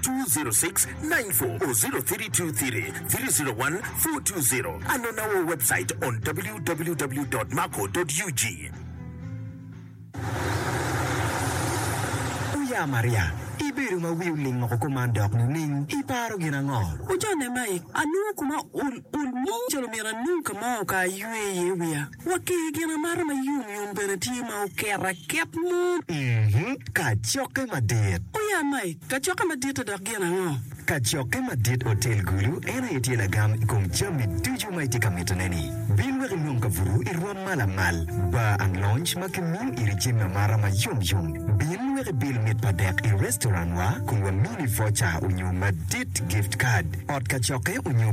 20694 or 0323301420. Anon our website on www.maco.ug. Oya Maria, ibedo ma wi oling loko kuman dok nining? Iparo gin ango? Ojanne Mike, anongo kuma ol ol mung calo myero anung ka ma oka aywe iye wiya. Wa ki i gin amata ma yom yom bene tye ma oket aket mot. Mm-hmm, kacokke madit. O ya Mike, kacokke madit-ti dok gin ango? Kacokke madit Otel Gulu en aye tye lagam i kom jami ducu ma itye ka mitone-ni. Bin wek inong kabuto i rwom ma lamal, bar and lounge ma kimiyo iri jami amata ma yom yom. Bin wek ibil mit pa dek i restaurant-wa kun wamini voucher onyo madit, gift card, ot kacokke onyo.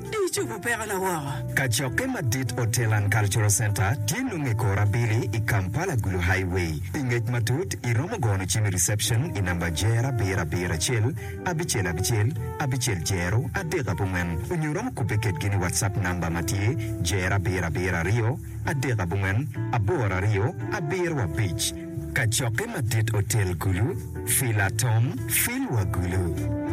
Di icobo pekona woko. Kacokke madit Hotel and Cultural Centre tye nongo i kor abili i Kampala Gulu Highway. Pi ngec matut, iromo gono cim i reception i namba Jer abiro abiro acel abicel abicel abicel jero adek abongwen onyo iromo kubbe kedgi ni WhatsApp namba ma tye Jer abiro abiro aryo adek abongwen aboro aryo abiro abic. Kacokke madit Hotel Gulu, Fila Tom, Filwa Gulu.